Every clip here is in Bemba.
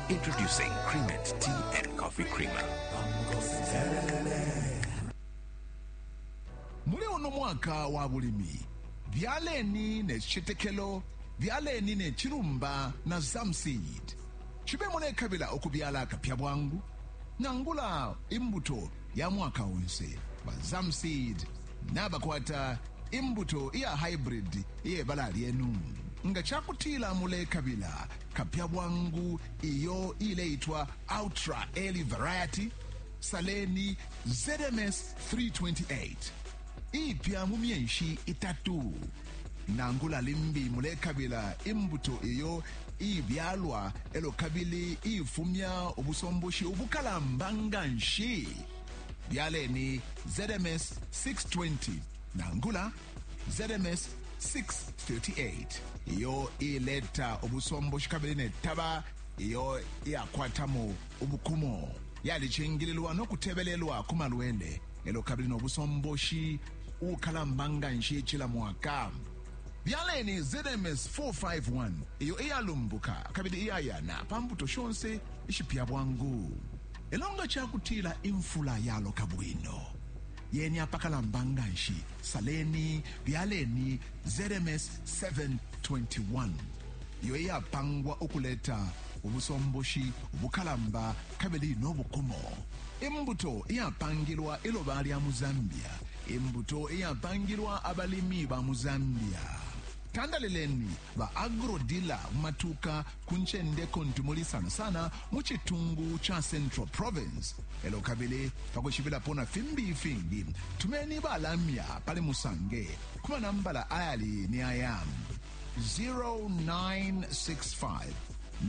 Introducing Creamate Tea and Coffee Creamer. muli uno mwaka wa bulimi byaleni ne cicetekelo byaleni ne cilumba na zamseed cibe mulekabila ukubyala akapya bwangu nangula imbuto ya mwaka onse ba zamseed nabakwata imbuto iya haibridi iye bala lyenu. Nga ca kutila mulekabila kapya bwangu iyo iileitwa Ultra Early Variety, saleni ZMS 328 iipya mu myeshi itatu. Nangula limbi mulekabila imbuto iyo iibyalwa e lyo kabili iifumya ubusomboshi ubukalamba nga nshi. Byaleni ZMS 620 nangula ZMS 638 iyo ileta ubusomboshi kabili ne taba iyo iyakwatamo ubukumo yalicingililwa no kutebelelwa ku malwele elo kabili no busomboshi ukalamba nga nshi cila mwaka byaleni zms 451 iyo iyalumbuka kabili iyayana pa mbuto shonse ishipya bwangu Lelo nga ca kutila imfula yaloka bwino, yeni apakalamba nga nshi, saleni, byaleni ZMS 721, iyo iyapangwa ukuleta ubusomboshi bukalamba kabili no bukumo, imbuto iyapangilwa iloba lya mu Zambia, imbuto iyapangilwa abalimi ba mu Zambia. Tandalileni Ba agro-dealer mu matuuka ku ncende kuntu muli sana sana mu citungu ca Central Province. E lyo kabili pa kwishibilapo na fimbi ifingi, tumeni ba lamya pali musange ku manambala ayali ni aya 0965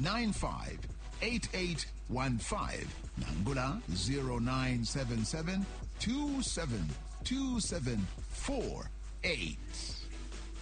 958815 nangula 0977 272748.